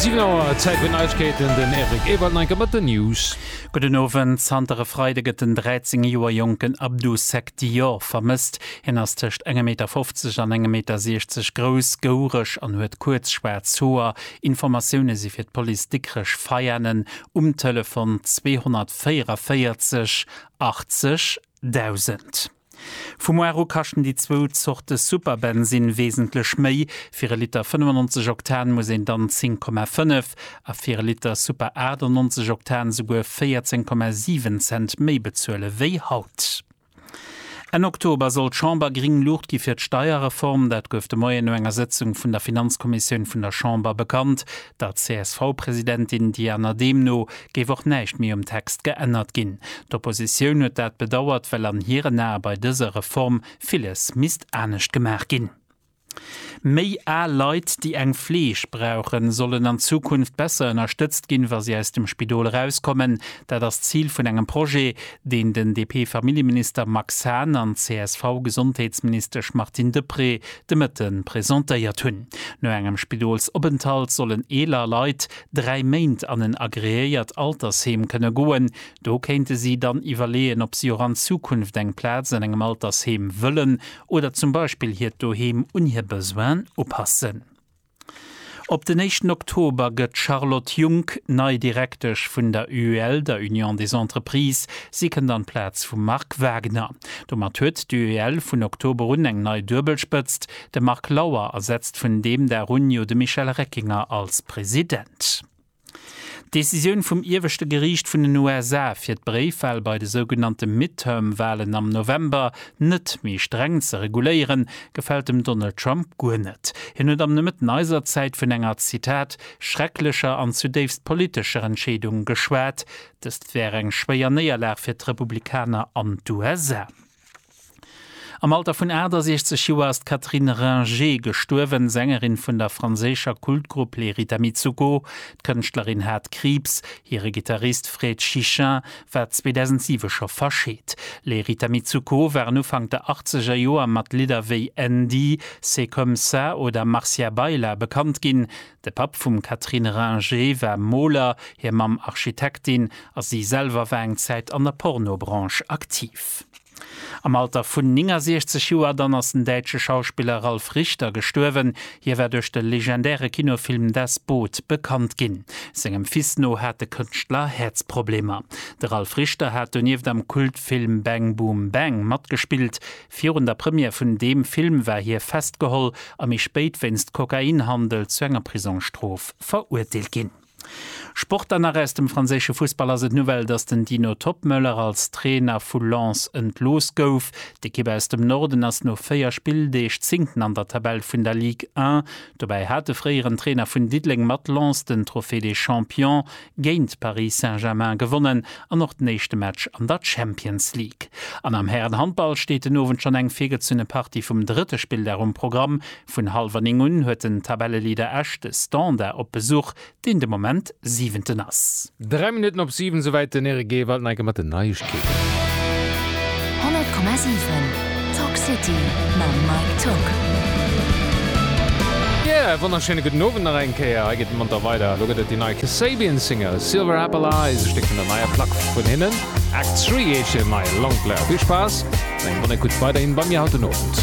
Siwen Auer, Zäit fir Neigkeeten, den Eric Ewald Neinker mat den News. Gudden Owend. Zanter e Freide gëtt den 13 Joer jonken Abdou Seck Dior vermësst. Hien ass tëscht engem Meter 50 an engem Meter 60 grouss, goureg an huet kuerz schwaarz Hoer. Informatioune si fir d'Police Dikrech Veianen um Telefon 244 80 1000. Vu muar u kaschten déi zwou Zorte Superbensinn wesentlech méi, fir e Liter 95 Oktan muss een dann 10,5 a fir e Liter Super 98 Oktan souguer 14,7 Cent méi bezuele wéi haut. Enn Oktober soll d'Chamber gring Luucht gi fir d'Steierreform. Dat gouf de Moien no enger Sëtzung vun der Finanzkommissioun vun der Chamber bekannt. Der CSV-Presidentin Diana Dehm no géif och näischt méi um Text geännert ginn. D'Oppositioun huet dat bedauert, well an hiren Ae bei dëser Reform villes misst anescht gemaach ginn. Méi al Leit, déi eng Fleeg brauchen, sollen an Zukunft besser ënnerstëtzt ginn, wa si aus dem Spidol erauskommen. Dat ass d'Zil vun engem Projet, deen den DP-Familljeminister Max Hahn an d'CSV-Gesondheetsministesch Martine Deprez de Mëtte presentéiert hunn. No engem Spidolsopenthalt sollen eeler Leit dräi Méint an en agreéiert Altersheem kënne goen. Do kéinte si dann iwwerleeën, ob si och an Zukunft eng Plaz an engem Altersheem wëllen oder zum Beispill hiert Doheem un hir Besoinen upassen. Op den éischten Oktober gëtt d'Charlotte Junck nei Direktesch vun der UEL, der Union des Entreprises. Si kënnt an d'Plaz vum Marc Wagner. Domat huet d'UEL vun Oktober un eng nei Duebelspëtzt, De Marc Lauer ersetzt vun deem Dag un jo de Michel Reckinger als President. D'Decisioun vum ieweschte Geriicht vun den USA fir d'Bréifwal bei de sougenannte Midterm-Walen am November net méi streng ze reguléieren, gefält dem Donald Trump guer net. Hien huet am Nomëtten eiser Zäit vun enger, Zitat, schrecklecher an zudéifst politescher Entscheedung geschwat. Dëst wär eng schwéier Néierlag fir d'Republikaner an d'USA. Am Alter vun 68 Joer ass d'Catherine Ringer gestuerwen, Sängerin vun der franséischer Kultgrupp Les Rita Mitsouko. D'Kënschtlerin hat Kriibs. Hire Gittarist Fred Chichin war 2007 scho verscheet. Les Rita Mitsouko waren Ufank der achtzeger Joer mat Lidder wéi Andy, C'est comme ça oder Marcia Baila bekannt ginn. De Papp vum Catherine Ringer war Moler, hir Mamm Architektin a si selwer war eng Zäit an der Pornobranche aktiv. Am Alter vun 69 Joer dann ass den däitsche Schauspiller Ralf Richter gestuerwen. Hie war duerch de legendäre Kinofilm Das Boot bekannt ginn. Sengem Fils no hat de Kënschtler Häerzproblemer. De Ralf Richter hat donieft am Kultfilm Bang Boom Bang matgespillt. Virun der Première vun deem Film war hie festgeholl a méi spéit wéinst Kokainhandel zu enger Prisongsstrof verurteelt ginn. Sport dann nach, Aus dem franséische Fussball ass et d'Nouvelle, datt den Dino Toppmöller als Trainer vu Lens entlooss gouf. D'Ekipp aus dem Norden ass no 4 Spilldeeg Zéngten an der Tabell vun der Ligue 1. Dobäi hat de fréieren Trainer vun Diddeleng mat Lens den Trophée des Champions géint Paris Saint-Germain gewonnen an och den éischte Match an der Champions League. An am Härenhandball steet den Owend schonn eng virgezunne Partie vum drëtte Spilldag um Programm. Vun hallwer 9 un huet den Tabelleleader Esch de Standard op Besuch, deen de Moment Siwenten ass. Dräi Minutten op siwen, souwäit den Eric Ewald. Neike mat den Neigechkeeten. 100,7 Talk City mam Mike Toock. Yeah, e wonnerschéine gudden Owend nach eng Kéier. Hei geet et monter weider. Elo gëtt et déi nei Kasabian Single Silver Apple Eyes, e Stéck vun der neier Plack vun hinnen. Act Three heescht hiren neie Longplayer. Vill Spaass an eng bonne Ecoute weiderhin bei mir haut den Owend.